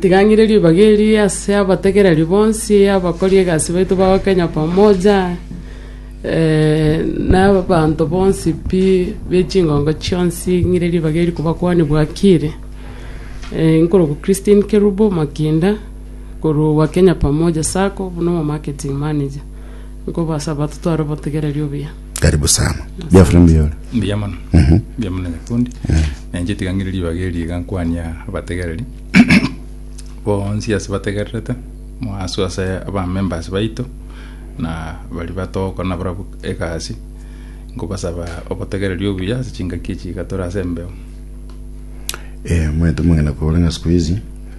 tigang'ire ribaga eri ase abategereri bonsi, abakori egasi baito bago Kenya Pamoja, na abanto bonsi pi be chingongo chionsi, ng'ire ribaga eri kobakuani bwakire. Nkorokwa Christine Kerubo Makinda, korwa Kenya Pamoja Sacco, buna omomarketing manager. Nkobasaba totware obotegereri obuya. Karibu sana. Jeffrey Mbiore. mbuya mono Mhm. mbuya mono nyakundi nenche tiga ng'ire ribaga eri iga nkwania abategereri bonsi ase bategererete mo- asu ase abamembers baito na bari batogokora na barabwo egasi nkobasaba obotegereri obuya ase chingaki echi iga tore ase embeo Eh, mwetu mong'ina kobora ng'a siku hizi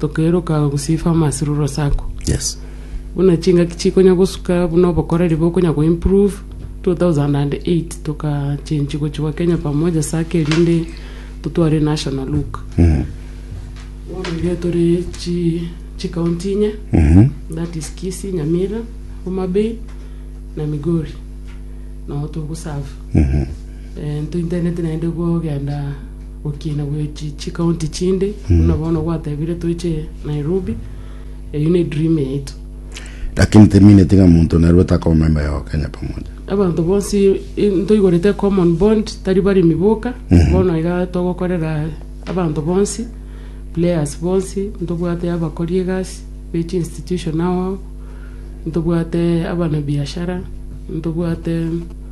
Tokeeroka gosifa amasiruru ase ako. Yes. Buna chingaki chikonya gosuka buna obokoreri bokonya go improve 2008 toka change gochigwa Kenya pamoja sake erinde totware national look. Mm. Bono iga tore chi chi county inye Mhm. that is Kisii, Nyamira, Homa Bay na Migori. No togoserve. Mhm. Eh, ntointenete naende gogenda Gokina gwe chi chi county chinde buna bono gwatebire toche Nairobi eyio ne dream yaito. Lakini temineti ng'a monto narue takaba member ya Wakenya Pamoja. Abanto bonsi i- ntoigorete common bond tari baremi boka bono iga togokorera abanto bonsi players bonsi ntobwate abakori egasi bechi institution ao ao ntobwate abana biashara ntobwate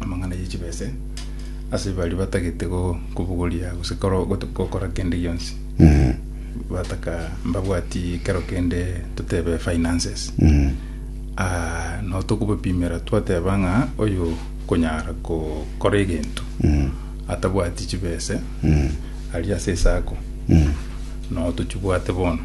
amang'ana ye chibese ase baria batagete go- kobogoria gose koro- goto- gokora kende gionsi Mm. bataka mbabwati kero kende totebe finances Mm. Ah, no tokobapimera twateba ng'a oyo konyara kokora egento Mm. atabwati chibese Mm. aria ase esako Mm. no tochibwate bono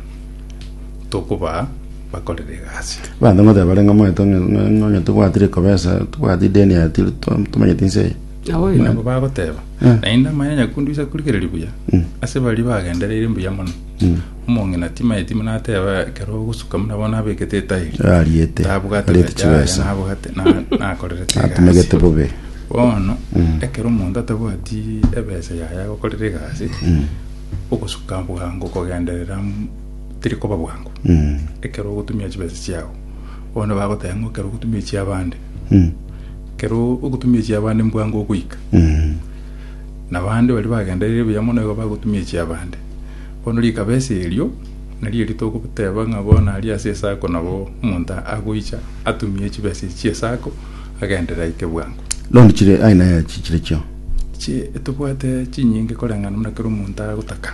tokobaa bakorere egasi. Abanto ngotea bare ng'a moete onye onye onye tobwatire kobesa, tobwati ideni aya tiri to- tomanyeti inse eye. Nabo Buna- nabo bagoteba, Eh. Naende amanya nyakundu ise akorigereria buya, Mm. ase baria bagendereire mbuya mono. Mm. Omong'ina timaeti buna ateba ekero ogosuka buna bono abekete etairi. Ariete, Tabwate ariete obecha aria chibesa. nabwate na- nakorerete egasi. Atumegete bobe. Bono Mm. ekero omonto atabwati ebesa yaye agokorera egasi, Mm. ogosuka bwango kogenderera teri koba bwango Mm. ekero ogotumia chibesa chiao bono bagoteba ng'a ekero ogotumia chiabande Mm. ekero ogotumia chiabande mbwango ogoika Mm. na bande bari bagenderire buya mono igo bagotumia echiabande bono rikabesa erio nario ritogoteba ng'a bono aria ase esako nabo omonto agoicha atumie chibesa echi chiesako agenderere aike bwango Loan chire aina ya chichire chio. Chi- tobwate chinyinge koreng'ana buna ekero omonto agotaka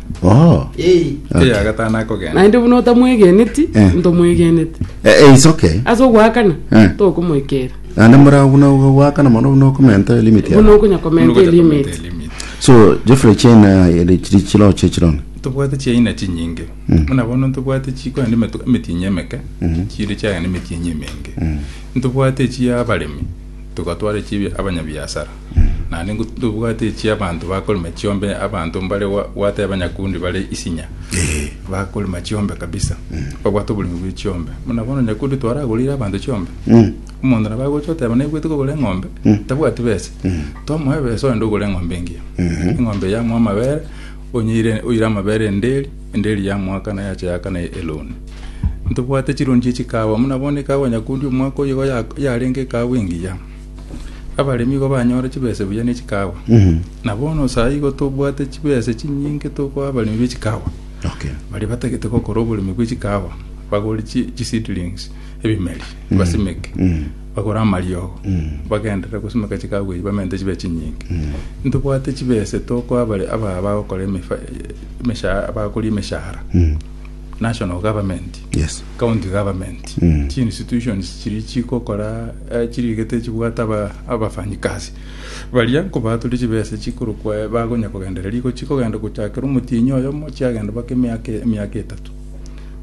Oh. Eh, Okay. Eya gatano akogenda. naende buna otamwegeneti Eh. ntomwegenete Eh, eh, it's okay. ase ogoakana Eh. tokomoikera Naende mora buna wakana mono buna okomenta limit buna yao. okonyakomenta Nugo takomete elimiti elimit. So Jeffrey China ere chiri chiro chechirona. tobwate chiaina chinyinge buna bono ntobwate chikoa ne metu- emetienyi emeke chire chiagana emetienyi emenge ntobwate echi abaremi tugatwara echi abia- abanyabiasara Naende ngo tobwate echi abanto bakorema chiombe abanto mbare gwa- gwateba nyakundi bare isinya bakorema chiombe kabisa babwate oboremi bwe chiombe buna bono nyakundi twaragorire abanto chiombe omonto nabo agocha oteba naigwete kogora eng'ombe tabwati besa tomoe ebesa ogende ogore eng'ombe engiya eng'ombe eye yamoa amabere onyeire oire amabere enderi enderi yamoakana yacha yakana eloni ntobwate chironi chie chikawa buna bono ekawa nyakundi omwaka oyo igo ya- yarenge ekawa engiya Abaremi igo banyore chibese buya ne chikawa. Na bono saa igo tobwate chibese chinyinge tokoa abaremi be chikawa. Okay. Baria batagete gokora oboremi bwe chikawa bagore chi- chi seedlings ebimeri basimeke bagore amariogo bagenderere gosimeka chikawa eyi bamente chibe chinyinge ntobwate chibese tokoa abare aba bagokora emefa- emesha- bagakora emeshahara national government Yes. county government Mm. chi institutions chiri chigokora Chiriga techibwate abafanyikasi baria, nkobaaturi chibesa chikorokwa bagonya kogendereria. Iko chikogenda gochakera omotienyi oyomo, chiagenda baka emiaka emiaka etato.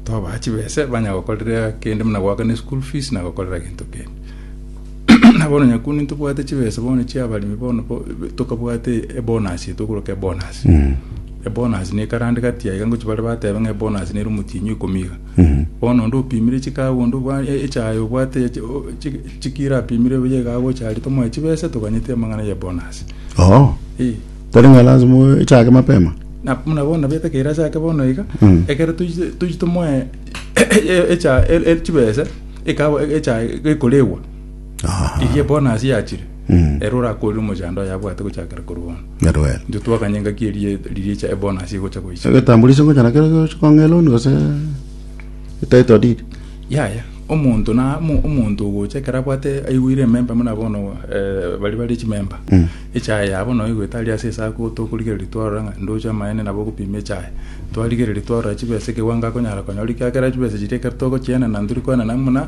Tobaa chibesa banya gokorera kende buna goakana eschool fees na gokorera gento kende. Na bono nyakuni ntobwate chibesa bono chia abaremi bono bo- tokabwate ebonus eto okoroka ebonus. Ebonus ne ekarande gati aiga ngochi bare batebe ng'a ebonus nere omotienyi ikomi iga. Bono onde opimire chikago, onde obwa- e- echaye obwate eche- o- chi- chikiro apimire buya iga agocharia tomoe chibesa toganyete amang'ana ya bonus. Oo. Eh. Tari ng'a lazima oe- echake mapema. Na buna bono nabo etakeire ase ake bono iga, Mm. ekero toiche toiche tomoe echa e- e- chibesa, ekaba echae gekoregwa. Erio ebonasi yachire, ere orakorire omochando oye abwate gochakera korwa bono. Ngero ero. Intwe twakanya engaki eria riria echa ebonasi egocha goicha. Egetambulisho ngocha nakero gocha kong'ea loan gose title deed. Yaya, omonto na omo- omonto ogocha ekero abwate aigwire ememba buna bono eh, bari bari chimemba echae yabo noe goeta aria ase esaku tokorigereria twarora ng'a ndoche amaene nabo ogopima echae twarigereria twarora chibesa ekewango akonyara konyora ekiagera chibesa chiria ekero togochienana ntori koenana buna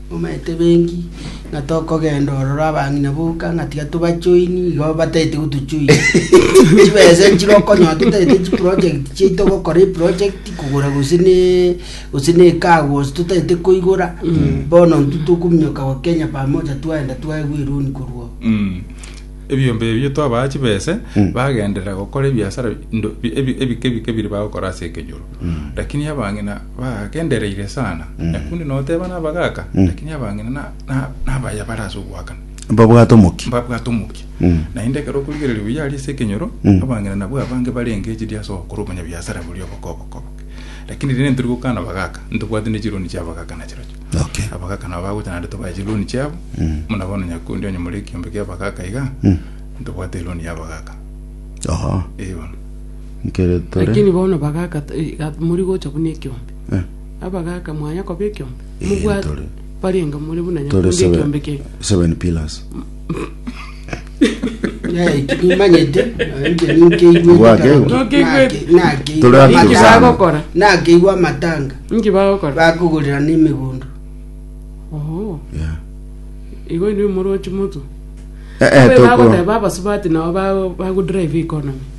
Momanyete benki, ng'a tokogenda ororo abang'ina boka, ng'a tiga tobachoini, igo batagete gotochoinia. Chibesa chire okonyoa totagete chiproject chiaito gokora eproject, kogora gose ne gose ne car wash totagete koigora, bono intwe tokominyoka goa Kenya pamoja twaenda twaegwa eroni korwa oo. Mm. ebiombe ebio twabaa chibese bagenderera gokora ebiasara ndo- bi- ebi- ebike ebike bire bagokora ase ekenyoro lakini abang'ina bagagendereire sana. Nyaku inde noteba nabagaaka, lakini abang'ina na- na- nabaya bare ase ogoakana. Mbabwate omokia. Mbabwate omokia. Mm. Naende ekero okorigereria buya aria ase ekenyoro, Mm. abang'ina nabwo abange barenge chiri ase ogokora obonyabiasara boria obokobokobo. Lakini riria ntori gokana abagaaka, ntobwati ne chironi chia abagaaka na chirochio. Okay. Abagaaka nabo bagocha naende tobaye chironi chiabo, Mm. buna bono Nyaku inde onye more ekiombe kia abagaaka iga, Mm. ntobwate eroni ya abagaaka. Oho. Eeh bono. Ekero tore. Lakini bono bagaka ta- eh, ga- mori gocha buna ekiombe. Eh. Abagaka mwanya koba ekiombe. Eh, Mobwate ntore. barenga more buna Tore nyakunde seven- ekiombe kere. seven pillars. kimanyete Gwake. Ntokeigwete. Tore ati Naki Sana. bagokora. nakeigwa amatanga Nki bagokora? bakogorera n'emigondo Oho. Yeah. Igo inwe morochi motu. Eh, eh, Abe tokoro. bagoteba abasubati nabo bago- bagodrive economy.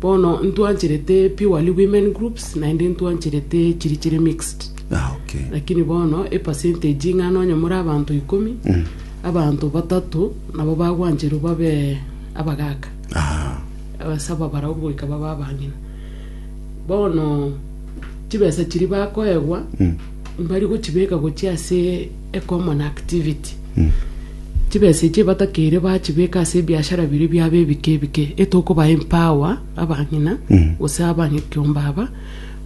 Bono ntwancherete purely women groups naende ntwancherete chiri chire mixed. Ah, okay. Lakini bono e percentage ng'a nonye more abanto ikomi, abanto batato nabo bagwancherwa babe abagaka. Ah, abasaba barao goika baba abang'ina bono chibesa chiri bakoegwa mbari gochibeka gochia ase a common activity. Chibesa echio batakeire bachibeka ase ebiashara biria biabo ebike ebike etokoba empower abang'ina gose abanyekiombe aba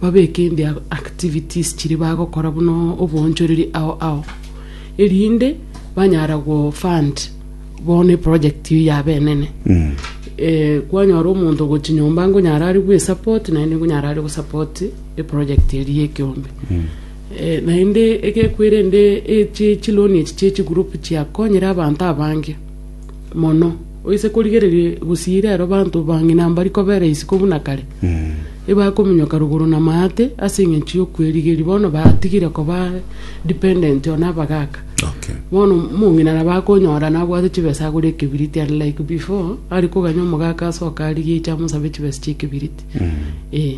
babeke in their activities chiria bagokora buna oboonchoreri ao ao erinde banyara go fund bono eproject eyio yabo enene Eh, kwanyora omonto ogochi nyomba ngonyara are gwesupport naende ngonyara are gosupport eproject eria y'ekiombe Naende egekwerende echi chiloni echi chie chigroup chiakonyire abanto abange mono oise korigereria gosiira ero banto bang'ina mbari kobera isiko buna kare. Ebakominyoka rogoro na maate ase eng'encho y'okwerigeria bono batigire koba dependent on abagaka. Okay. Bono omong'ina nabo akonyora nabwate chibesa agure ekebiriti unlike before are koganya omogaka asoke arigie aiche amosabe chibesa chi'ekebiriti. Eh.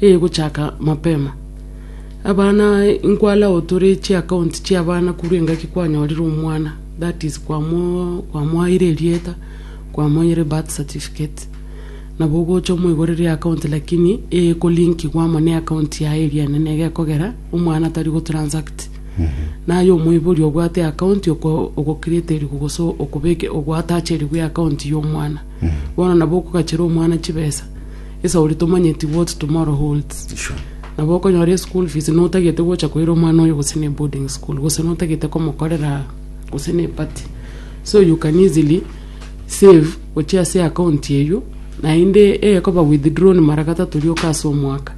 eye gochaka mapema. Abana inkwalao tore chi account chia abana korwa engaki kwanyorire omwana that is kwamo kwamoaire erieta kwamoire birth certificate nabo ogocha omoigorere account lakini eye ko link gwa amo ne account yaye eria enene egekogera omwana tari go transact naye omoibori obwate account oko ogo create rigo gose okobeke ogoatachere gwe account ya omwana Bono nabo okogachera omwana chibesa ase oria tomanyeti what tomorrow holds. Sure. Nabo okonyora school fees notagete gocha koira omwana oyo gose ne boarding school gose notagete komokorera gose ne party. So you can easily save gochia ase account eywo naende ekoba withdrawn mara gatato rioka ase omwaka.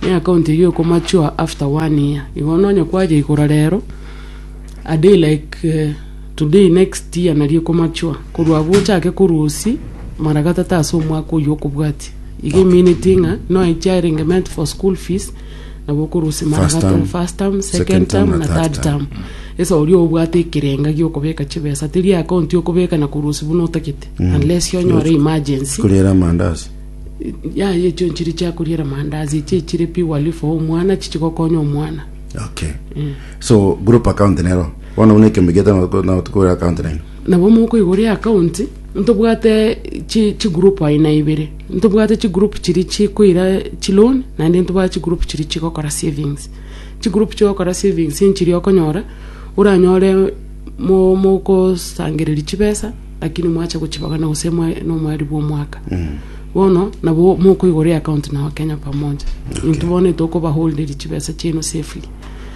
Ne account eywo eko mature after one year. Igo nonya kwayeigora rero a day like eh, Today next year nario ekomature korwa agwo ochake korwa osi mara gatata ase omwaka oyio okobwati iga emineti ng'a noe echiarenge meant for school fees nabo okorwa osi mara First term. first term second term na third term esa oria obwate ekerenga giokobeka chibesa teri account yokobeka na korwa osi buna otagete unless onyore emergency Kurira mandasi. ya echo nchiri chia kuriera mandazi echi echire purely for omwana chichi gokonya omwana Okay. So group account nero. Bono buna ekeombe giaito nabo toko- nabo tokogora account naino. Nabo mokoigora eakaunti, ntobwate chi chigroup aina ibere, ntobwate chigroup chiria chikoira chiloan, naende ntobwate chigroup chiria chigokora savings. Chigroup chigokora savings nchiria okonyora, oranyore mo- mokosangereria chibesa, lakini mwacha gochibagana gose mwa nomweri bwa omwaka. Bono, nabo mokoigora eakaunti na wakenya pamoja, intwe bono etokobaholderia chibesa chiaino safely.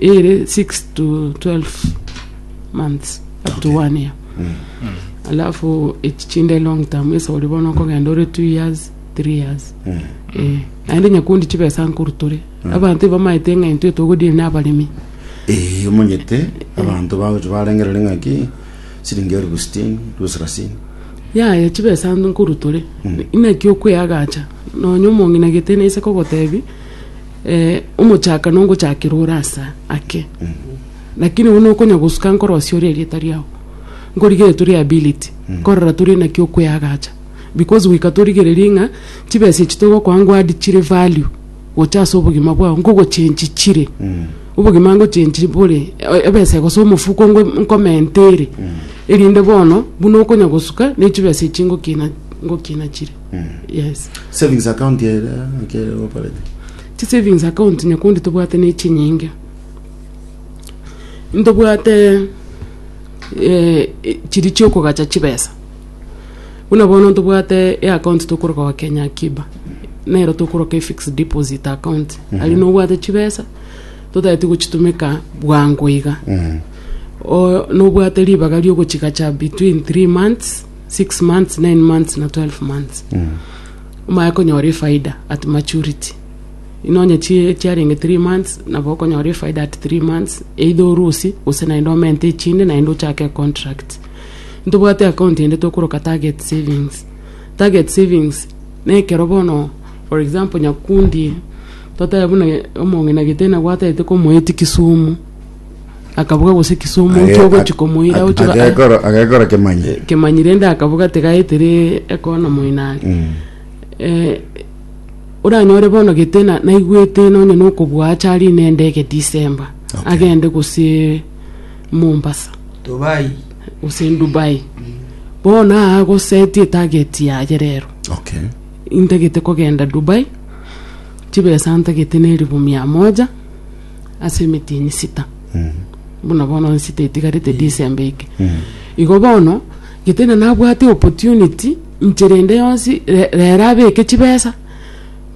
ere 6 to 12 months up to one year alafu echi chinde long term esa ori bono okogenda ore two years three years Eh, naende nyakundi chibesa nkorutore abanto ibamaete ng'a intwe togodiri nabaremi Eh, omonyete abanto bagocha barengerere ng'aki siringi elfu sitini elfu sarasini yaya chibesa nkorutore inaki okweagacha nonya omong'ina gete naise kogotebi Eh, omochaka nongochakera ore asa ake lakini bono okonya gosuka nkorosia ore erieta riao nkorigere tore ability nkorora tore naki okweagacha because goika torigererie ng'a chibesa echi togokoa ngoad chire value gocha ase obogima bwao nkogochenchi chire obogima ngochenchi bore e- ebesa gose omofuko ngwe nkomenta ere erinde bono buna okonya gosuka ne chibesa echi ngokina ngokina chire yes Savings account ere akere operate. chi savings account nyakundi tobwate ne chinyinge ntobwate eh, eh, chiri chiokogacha chibesa buna bono ntobwate e account tokoroka wa kenya akiba nero tokoroka e fixed deposit account ari nobwate chibesa totageti gochitumeka bwango iga O- nobwate ribaga riogochigacha between 3 months six months, nine months na twelve months. Omanye konyora efaida at maturity. Inonye chi- chiarenge three months, nabo okonyora efaida at three months, either orusie, gose naende omente echinde naende ochake econtract. Ntobwate account ende tokoroka target savings. Target savings, na ekero bono for example Nyakundi, totebe buna omong'ina Giteni abwatete komoeti Kisumu, akaboga gose kisumu Age- ki ogochi komoira ag- ochi ba- agekora- agekora kemanyi kemanyi rende akaboga tigaetire ekona moinani Mm. eh, oranyore bono gete na- naigwete nonye nokobua acha ari nende ege december Okay. agende gose mombasa Dubai. gose dubai bono aa goseti etageti yaye rero okay intagete kogenda dubai chibesa ntagete na elifu mia moja ase emetini sita buna bono nsita etigarete December eke igo bono gete na nabwate opportunity inche rende yonsi re- rero abeke chibesa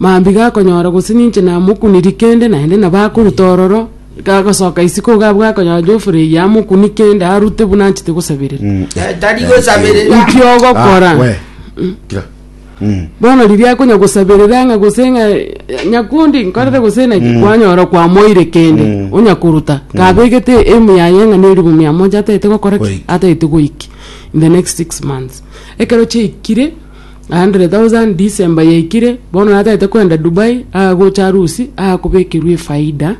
mambia gakonyora gose ninche namokuniri kende naende nabo akoruta ororo gagosoka isiko iga abwo gakonyora Geoffrey eye amokuni kende arute buna anchete gosaberera Tari gosaberera. inki ogokora Ah, we. Kira. Bono riria akonya gosaberera ng'a gose ng'a eh, nyakundi nkorere gose naki kwanyora kwamoire kende onya koruta kabegete emu yaye ng'a ne elifu mia moja ataete gokora ki Goiki. ataete goiki in the next six months ekero chiaikire 100,000 December yaikire bono nataete koenda Dubai agocha harusi akobekerwa efaida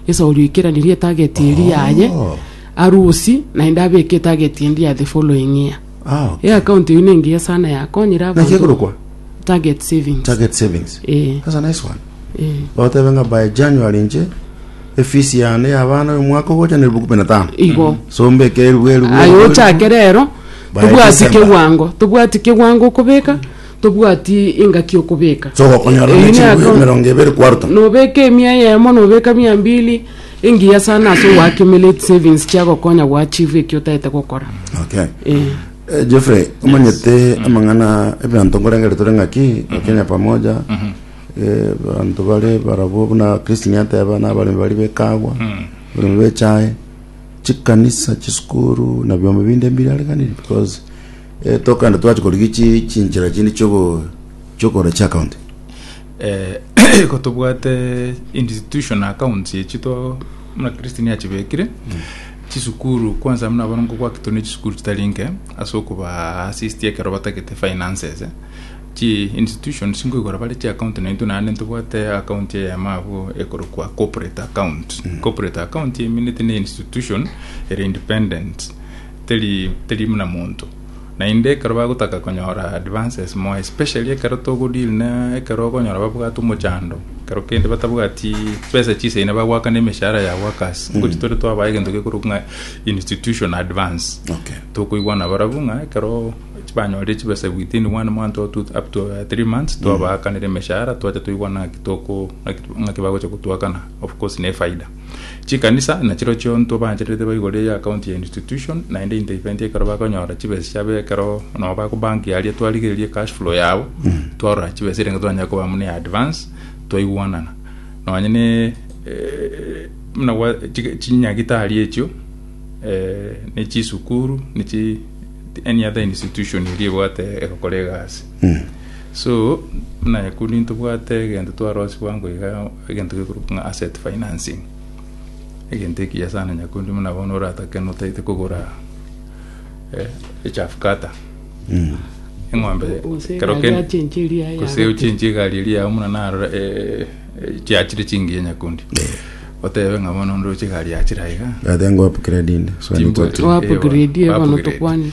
esauri ekeranirie etarget eria yaye harusi naende abeke etarget endi ya the following year Ah, okay. Ee account eyio nengiya sana yakonyire Naki abanto. ekorokwa Target savings. target savings. Eh. That's a nice one. Eh. Bagotebe ng'a by January inche efisi yane ya abana omwaka ogocha na elfu kumi na tano. Igo. So mbeke elfu elfu. Aye elfu, ochake rero By tobwati December. kegwango tobwati kegwango okobeka tobwati engaki okobeka So gokonyora Eyio ne ne chinguru account- emerongo ebere kwaruta. nobeka emia eyemo nobeka mia mbili Engiya sana ase ogoaccumulate savings chiagokonya goachieve ekio otaete gokora. Okay. Eh. Eh, Geoffrey, omanyete amang'ana ebianto nkorengere tore ng'aki Kenya pamoja eh, banto bare barabwo buna Christine ateba na abaremi bari bekagwa abaremi bechae chikanisa chisukuru na biombe binde mbirareganire because eh, tokande twachi korigia chi chinchera chinde chiogo chiokora chiacounty Iko tobwate institution accounts echi to muna Kristo niye achibekire chisukuru kwanza muna bono ngokwakitwe ne chisukuru chitari nke ase okoba assist ekero batagete finances chi institutions nkoigora bare chi account naintwe naende ntobwate account eyemo abwo ekorokwa corporate account corporate account emineti ne institution ere independent teri teri muna monto Naende ekero bagotaka konyora advances moa especially ekero togo deal na ekero okonyora babwate omochando ekero kende batabwati chibesa chiseine bagoakana emeshahara ya workers ngochi tore twabae egento gekorokwa ng'a institution advance Okay. tokoigwana barabwo ng'a ekero banyorire chibesa within one month or two, up to uh, three months twabaakanera emeshahara twacha toigwana ng'aki toko ng'aki ng'aki bagocha gotwakana of course nefaida Chikanisa nachirochio ntobaanchererete baigure ya account ya institution naende into event ekero bakonyora chibesa chiabo ekero nabo bako bank yaria twarigereria cash flow yabo twarora chibesa erenge twanyare koba muna ya advance twaigwanana nonye ne eh, muna gwa chi- chinyagitari echio eh, ne chisukuru ne chi any other institution eria ebwate egokora egasi so naye kundi ntobwate egento twarosiwa ngoiga Egento gekorokwa ng'a asset financing, egento ekiya sana nyakundi buna bono oratake notaete kogora eh, echafu kata eng'ombe Gose ekero egari ken- yachenche eria ya gose agotiri. ochenche egari eria yao muna narora eh, eh, chiachire chingiya nyakundi otebe ng'a bono ndoche egari yachire aiga That then go upgrade in. So I need to Timbwa- upgrade. Wa Eh, upgrade, bono upgrade. tokwane.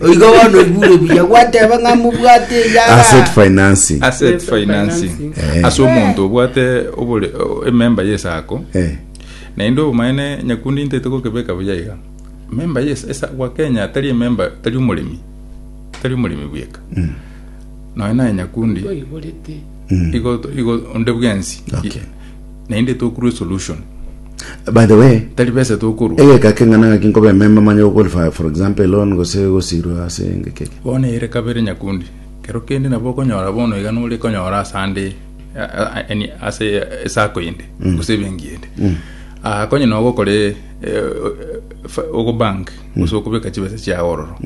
Oigo bono oigure buya gwateba ng'a mobwate eyara. Asset financing. asset Asset financing financing. Eh. ase omonto obwate obore- o- ememba yesako Eh. naende obomaene nyakundi ntaete gokebeka buya iga memba yes esa gwa kenya tari ememba tari omoremi tari omoremi bweka noe naye nyakundi Oiborete. igo igo onde bwensi Okay. Naende tokurwe solution. By the way, Tari besa tokorwa. egeka keng'ana ng'aki nkoba ememba manye goqualify for example a loan gose gosirwa ase engeki eke. Bono ere kabere nyakundi. Kero kende nabo okonyora bono iga nore konyora ase ande a- a- a- yani ase esako ende gose ebenki ende. Ah, konye na ogokore ogo bank gose okobeka chibesa chiago ororo.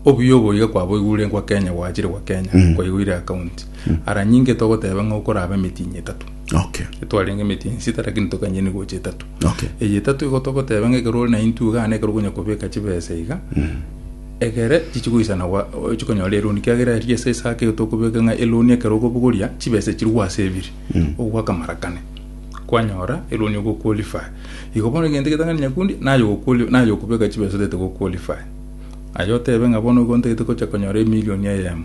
Obuya obo iga kwaboigure nkwa Kenya gwachire gwa Kenya kwaigure account. Ara nyinge togoteba ng'a okorabe emitinyi etato. Okay. twarenge emeti ensita lakini tokanyeni gocha etatu Okay. eye etatu igo togoteba ng'a ekero ore na intwe iga nekero okonya kobeka chibesa iga egere chichigoisana gwa- o- chikonyora eloni kiagera eria ase esake igo tokobeka ng'a eloni ekero okobogoria chibesa chiri gwaseviri ogwaka mara kane kwanyora eloni ogoqualify igo bono egento egetang'ani nyakundi naye ogoquali- naye okobeka chibesa otagete goqualify aye otebe ng'a bono igo ntagete gocha konyora emilion eyemo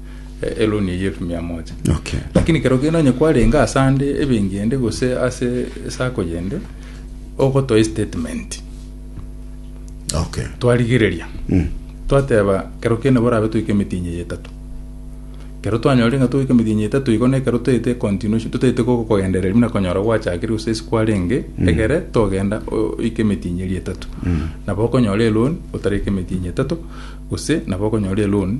e- eloni eye elfu mia moja Okay. lakini kero kende onye kwarenge ase ande ebenki ende gose ase esako yende ogotoa estatement Okay. twarigereria Mm. twateba kero kende borabe toike emitinyi eye etato kero twanyore ng'a toike emitinyi etato igo nekero toete continuation totaete ko- kogendereria buna konyora gwachakire gose ase kwarenge egere togenda o- oike emitinyi eria etato nabo okonyora eloni otareke emitinyi etato gose nabo okonyora eloni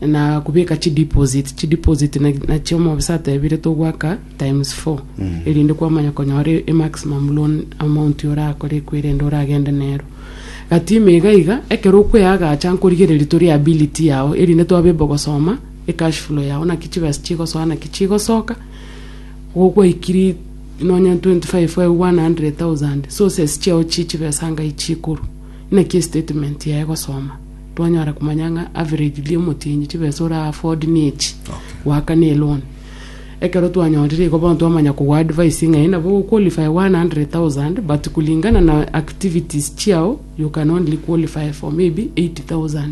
na kubeka chi deposit chi deposit na- nachio omobisa atebire togwaka times four erinde kwamanya konyora e- e maximum loan amount orakore ekwerende oragende nero gati ime iga iga ekero okweagacha nkorigereria to liability yao erinde twabe able gosoma e cash flow yao naki chibesa chigosoa naki chigosoka igo gwaikiri nonye 25 aye 100,000 sources chiao chi chibesa ngai chikorwa. Naki statement yaye gosoma twanyara komanya ng'a averagely omotienyi chibesa ora afford ne echi Okay. goaka ne loan. Ekero twanyorire igo bono twamanya kogwa advice ng'a nabo go qualify 100,000 but kulingana na activities chiao you can only qualify for maybe 80,000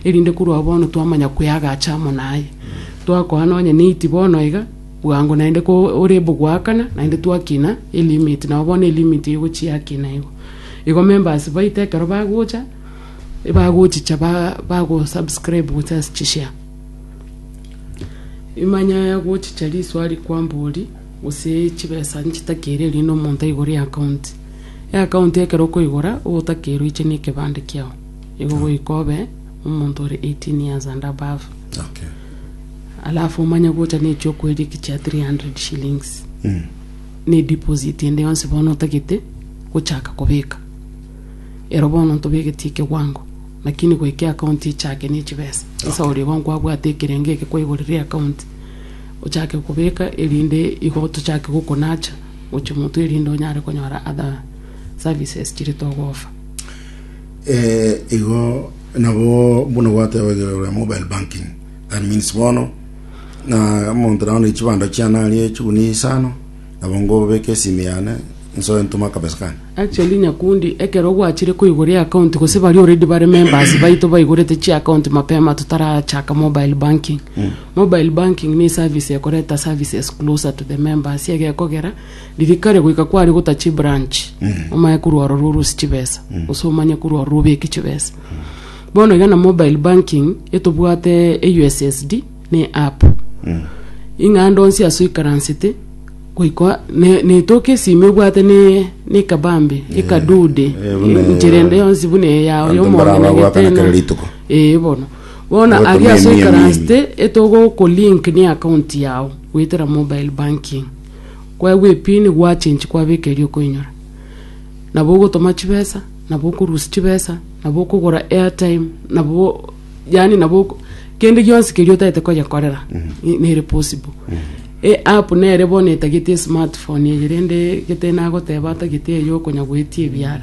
erinde korwa bono twamanya kweagacha amo naye. Twakoa nonye ne 80 bono iga Bwango naende ko ore bo goakana, naende twakina elimit, nao bono elimit eye gochiakina igo. Igo members baito ekero bagocha, ebagochicha ba bago subscribe gochia ase chishare. Imanya gochicha risoa rikwambori gose chibesa nchitakere erinde omonto aigore eaccount. Eaccount ekero okoigora ogotaka roiche na ekebande kiao. Igo goika obe omonto ore 18 years and above. Okay. alafu omanye gocha n'echiokweria eki chia 300 shillings ne deposit ende yonsi bono otagete gochaka kobeka ero bono ntobegetie ekewango lakini goika eakaunti echake ne chibesa sasa oria igo nkwabwate ekerengo eke kwaigorera eakaunti ochake kobeka erinde igo tochake gokonacha gochia motwe erinde onyare konyora other services chire togofa Igo nabo buna gwatebaigwe ore mobile banking that means bono na omonto naye one chibando chiane arie chiguni isano nabo ngobeke esimi yane nsoe ntome akabesa kane Actually nyakundi ekero gwachire koigora eaccount gose baria already bare members baito baigorete chiaccount mapema totarachaka mobile banking mobile banking ne eservice ekoreta services closer to the members egekogera Ririkari goika kware gota chibranch omaye korwa ororo orose chibesa gose omanye korwa ororo obeke chibesa bono iga na mobile banking etobwate e ussd na eapp ing'a ande onsi ase oikaransete goika ne- netoke esimi obwate ne- ne ekabambe ekadude eh, buna- enchera ende yonsi buna eyao Abanto yomonene mbaraba gwakana kera rituko. ee bono bono Ogotumia aria ase emia oikaransete etogokolink ne account yao goetera mobile banking Kwegwa epini gwachenchi kwabeka eria okoinyora. Nabo ogotoma chibesa, nabo okorusia chibesa, nabo okogora airtime, nabo yani nabo oko- kende gionsi keria otaete konyekorera i- nere possible. E app nere bono etagete esmartphone eye rende gete nagoteba atagete eye okonya goetia ebiara.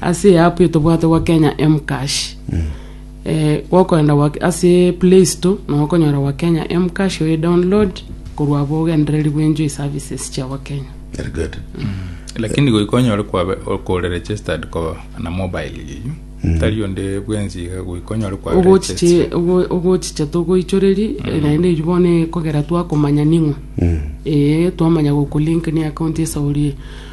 ase e app etobwate gwa kenya mcash eh, gokoenda gwa- ase play store na okonyora gwa kenya mcash oye download korwa abo ogendereri bwenju e services chia gwa kenya Very good. lakini goika onyore kwabe- okore registered ko na mobile yiyu tari onde bwensi iga goika onyore kwabe registered. ogochiche ogochicha togoichoreri naende erio bono ekogera twakomanya ning'o ee twamanya gokolink ni account esa orie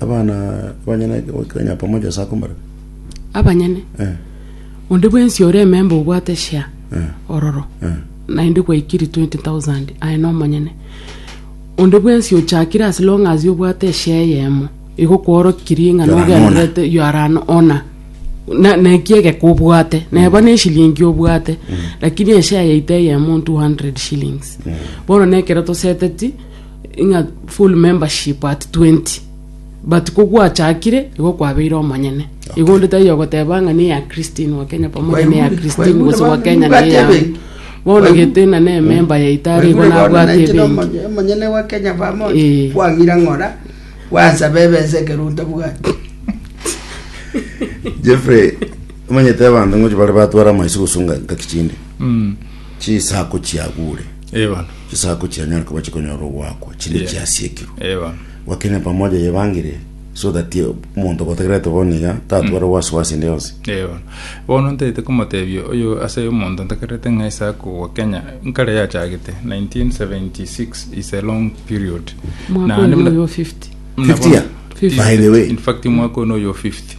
Abana abanyene goikirania pamoja ase akomorero. Abanyene, Eh, onde bwensi ore ememba obwate share eh, ororo, eh. naende gwaikiri 20,000 aye nomonyene. Onde bwensi ochakire as long as obwate eshare eyemo, igo kworokiri ng'a You are an nogendererete you are an owner. Na- naki egeka obwate, neba na eshilingi obwate, lakini eshare yaito eyemo 200 shillings. Bono nekero toseteti ng'a full membership at 20 but ko gwachakire igo kwabeire omonyene igo onde taiyo ogoteba ng'a neya christine wa kenya pamoja neya Kwaigure, christine kwaigure gose wa bana, kenya nibwate neya ebenki. bono Kwaigure. gete na nememba yaito are igo nabwate ebenki omonyene wa kenya pamoja Eh. kwang'ira ng'ora gwansaba ebesa ekerunta bwati jeffrey omanyete abanto ngochi bare batwara amaisi gosunga ngaki chinde chisako chiagure Eba. Chisaku chianyare koba chikonyora ogoakwa chinde Yeah. chiasiekirwe Eh, bono. gwakene pamoja yebangire so that eh, omonto gotagerete bono iga tatware wasiwasi ende yonsi Eh, bono. bono ntaete komotebia oyo ase omonto ntakerete ng'a isaku gwa kenya nkare yachagete 1976 is a long period mwaka Naende oyo muna- oyo 50 muna 50 bono- year? 50. by the way In fact mwaka ono oyo 50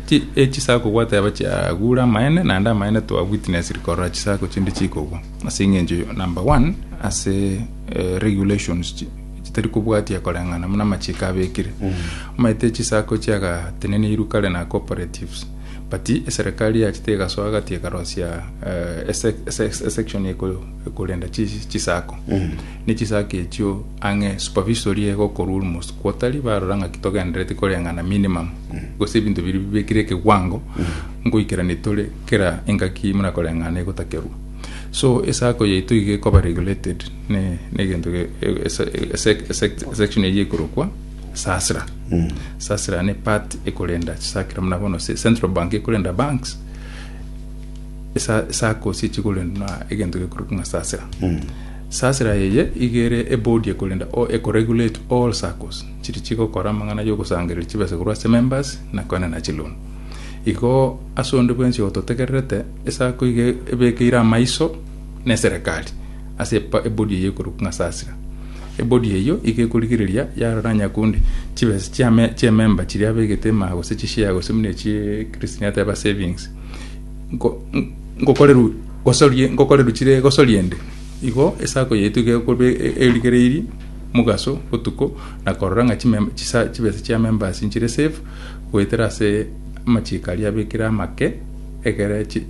Chisaku gwateba chiagure amaene, naende amaene twa witness korora chisaku chinde chikogwa. Ase eng'encho eyio, number one, ase regulations chitari kobwatia koreng'ana buna amachiko abekire. Omanyete chisaku chiagateneneirwe kare na cooperatives, but eserekari yacha tegasoa agati ekarosia esection ekorenda chisaku. Ne chisaku echio Ang'e superficially iga okorwa ore mosukuotari barora ng'aki togendereti koreng'ana minimum gose ebinto biria bibekire ekewango ngoikera nitore kera engaki muna koreng'ana egotakerwa so esako yaito iga ekoba regulated ne negento ge- e- ese- ese- ese- section eyio ekorokwa sasra sasra ne part ekorenda chisakira muna bono se- central bank ekorenda banks esa- esako ase echikorendwa egento gekorokwa ng'a sasra Sasira eye iga ere ebodie korende o eko regulate all circles chiri chigokora amang'ana yogosangereria chibesa korwa ase members na koena na chiloan. Igo ase onde bwensi ototegererete esako iga ebekeire amaiso ne serekari ase ebodie eye ekorokwa ng'a Sasira. Ebodie eyio iga ekorigereria yarora nyakundi chibesa chiamemba chiria abegete emaha gose chishare gose buna echi Christine ateba savings. Nko- n- ngokoreru gosorie ngokoreru chire gosorie ende igo esako yaito iga ekorwa e- e- erigereiri mogaso botuko na korora ng'a chimem- chisa- chibesa chia members nchire safe goetera ase amachiko aria abekire amake egere chi-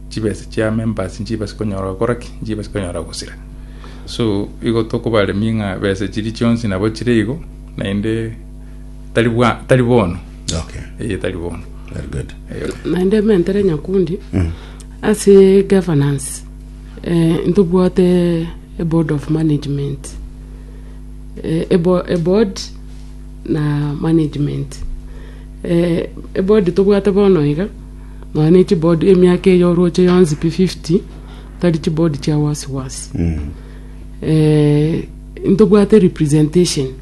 chibesa chia members nchibase konyora gokora ki nchibase konyora gosira so igo tokobaremia ng'a besa chiria chionsi nabo chire igo naende tari bwa tari bono Okay. eye etari bono Very good. Eh, naende mentere nyakundi Mm. ase governance eh, ntobwate a board of management eh, a, bo, a board na management eh, a board tobwate bono iga nonya ne chiboard emiaka eyo oroche yonsi pi 50 tari chiboard chia wasiwasi Mm. eh, ntobwate representation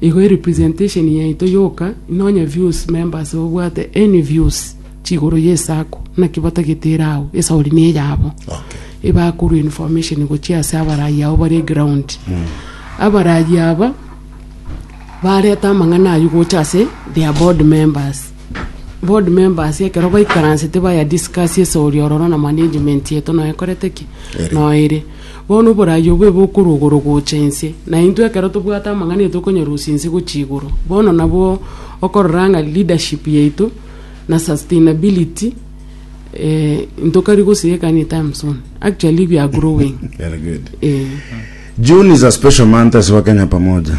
Igo erepresentation yaito yoka nonye views members obwate any views chigoro ye sacco naki batagete ere agwo esauri ne eyabo Okay. ebakorwa information gochia ase abarayi abo bare ground abarayi aba bareta amang'ana aywo gocha ase their board members Board members ekero baikaransete baya discuss esori ororo na management yeto noe korete ki Ere. noe ere bono oborayi obo ebe okorwa igoro gocha inse na intwe ekero tobwate amang'ana yaito okonyarusia inse gochia igoro bono nabwo okorora ng'a leadership yaito na sustainability eh, ntokari gosieka anytime soon actually we are growing Very good. eh. June is a special month as Wakenya Pamoja.